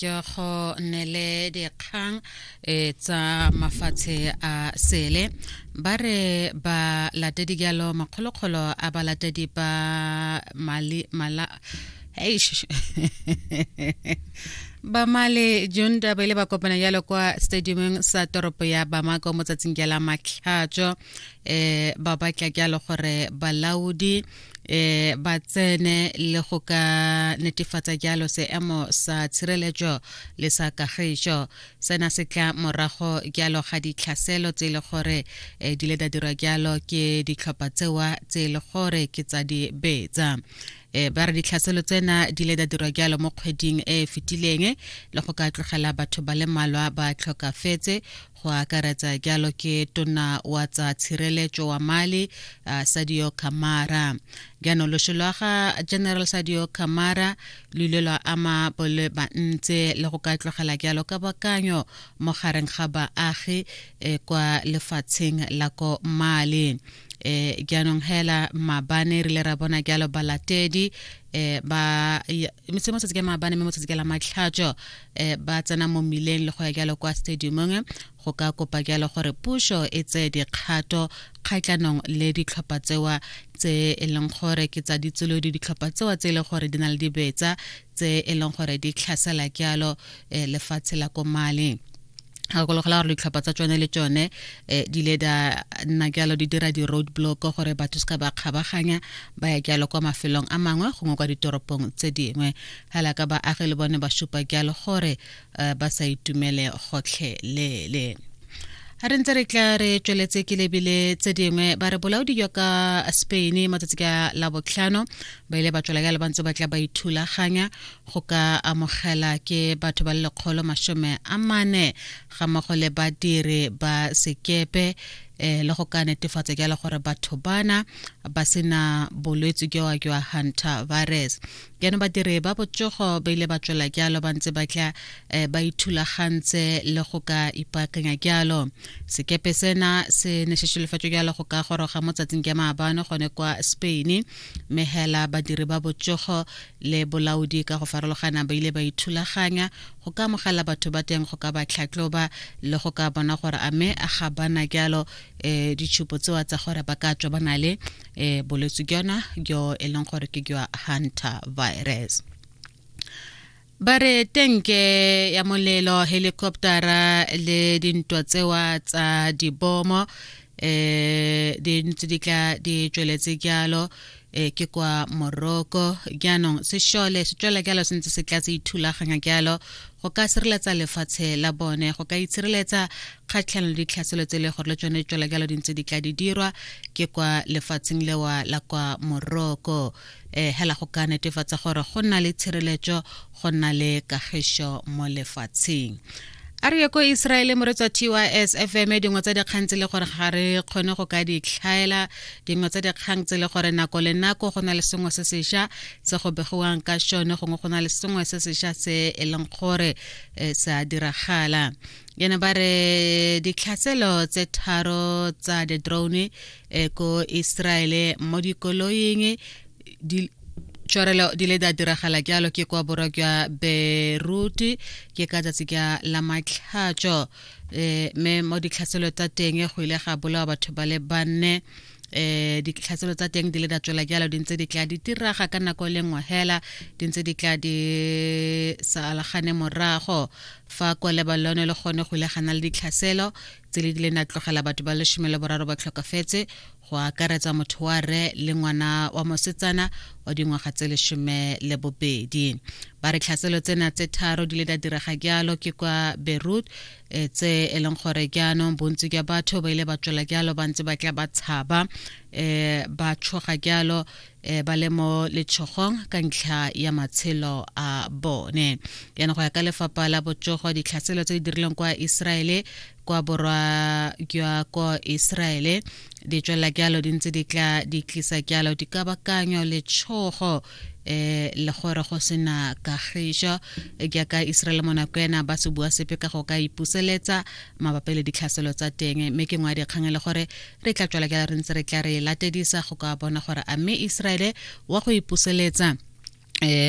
ke go nele dikgang e tsa mafatshe a sele ba re ba latedi jalo makgolokgolo a ba latedi ba mali mala eish bamale john daba ile ba kopana jalo kwa stadiumeng sa toropo ya bamako mo tsatsing ja la matlhatso um ba batla jalo gore balaodi e ba tsene le go ka netefatsa jalo seemo sa tshireletso le sa kagišo sena se tla morago jalo ga ditlhaselo tse e le gore e, di le da dirwa jalo ke ditlhopha tsewa tse e le gore ke tsa di betsa e ba re ditlhaselo tsena di le da dirwa jalo mo kgweding e e fetileng le go ka tlogela batho ba le malwa ba tlhokafetse go akaretsa jalo ke tona wa tsa tshireletso wa mali uh, sadio kamara jaanong loso lwa ga general sadio kamara lo ile lwa ama bole bantse le go ka tlogela jalo ka bakanyo mo gareng ga baagi eh, kwa lefatsheng la ko mali eh jaanong hela mabane re le ra bona jalo balatedi eh ba metse mo tsatsi ke mabane mme mo tsatsi ke la matlhatso eh, ba tsena mo mmileng le go ya jalo kwa stadiumong go ka kopa jalo gore puso e tseye dikgato kgatlhanong le ditlhopha tsewa tse e leng gore ke tsa ditsolodi ditlhopha tsewa tse e leng gore di na le dibetsa tse e leng gore di tlhasela jalo eh, lefatshe la ko mali gakologela gore ditlhopha tsa tsone le tsone um eh, di ile da nna jalo di dira di-road block gore batho se ka ba kgabaganya ba ya jalo kwa mafelong a mangwe gongwe kwa ditoropong tse dingwe Hala ka baagi le bone ba supa jalo gore eh, ba sa itumele gotlhelele a re ntse re tla re tsweletse ke lebile tse dingwe ba re bolaodi jwa ka spain matsatsi ka la botlhano ba ile ba tswela jalo ba ntse ba tla ba ithulaganya go ka amogela ke batho ba le lekgolo masome a mane ga mmogo le badiri ba sekepe eh, le go ka netefatsa jalo gore batho bana ba sena bolwetse jwa jwa hunter virus jaanong badiri ba botsogo ba ile ba tswela jalo ba ntse ba tla um ba ithulagantse le go ka ipaakanya jalo sekepe sena se ne se šolofatso jalo go ka goroga mo tsatsing ja maabano gone kwa spain mme hela badiri ba botsogo le bolaodi ka go farologana ba ile ba ithulaganya go ka amogela batho ba teng go ka ba tlhatloba le go ka bona gore a me ga bana jalo um ditšhupo tsewa tsa gore ba ka tswa ba na le e bolwetse jona jo e leng gore ke jwa hunter virus ba re tenke ya molelo helicoptera le dintwa tsewa tsa dibomo um di ntse di tla di tsweletse jalo um ke kwa morocco jaanong sešole se tswela jalo se ntse se tla se ithulaganya jalo go ka sireletsa lefatshe la bone go ka itshireletsa kgatlhanong le ditlhaselo tse e le gore le tsone tswela jalo dintse di tla di dirwa ke kwa lefatsheng lewa la kwa moroko um hela go ka netefatsa gore go nna le tshireletso go nna le kagišo mo lefatsheng a re ye ko israele moretsa tys fm dingwe tsa dikgang tse le gore ga re kgone go ka ditlhaela dingwe tsa dikgang tse le gore nako le nako go na le sengwe se sešwa se go begiwang ka šone gongwe go na le sengwe se sešwa se e leng gore eh, sa diragala yana ba re ditlhatselo tse tharo tsa the drone eh, ko israele mo dikoloing di tšhwarelo di le da diragala jalo ke kwa borwa jwa beirut ke ka tsatsi ka la matlhatso eh, me mo ditlhatselo tsa teng go ile ga bolawa batho ba le banne eh ditlhatselo tsa teng di le da tswela jalo di ntse di tla di tiraga ka nako e le nngwe hela di ntse di tla di sa alagane morago Fa kwa Lebalone le gone go ile ga na le ditlhaselo tse le dileng na tlogela batho ba lesome le boraro ba tlhokafetse go akaretsa motho wa re le ngwana wa mosetsana wa dingwaga tse lesome le bobedi ba re tlhaselo tsena tse tharo di le da direga jalo ke kwa beirut eh, tse e leng gore jaanong bontsi jwa batho ba ile ba tswela jalo ba ntse ba tla ba tshaba um ba tshoga jalo e ba le mo letshogong ka ntlha ya matshelo a bone yana go ya ka lefapha la botsogo ditlhaselo tse di dirilweng kwa iseraele kwa borwa jwa ko iseraele di tswelela jalo di ntse di tla di tlisa jalo dikabakanyo letshogo eh le gore go sena kagišo jaaka iseraele mo nako ena ba se bua sepe ka go ka ipuseletsa mabapi le ditlhaselo tsa teng mme ke ngwa dikgang e le gore re tla tswela ka re ntse re tla re latedisa go ka bona gore a mme Israele wa go ipuseletsa eh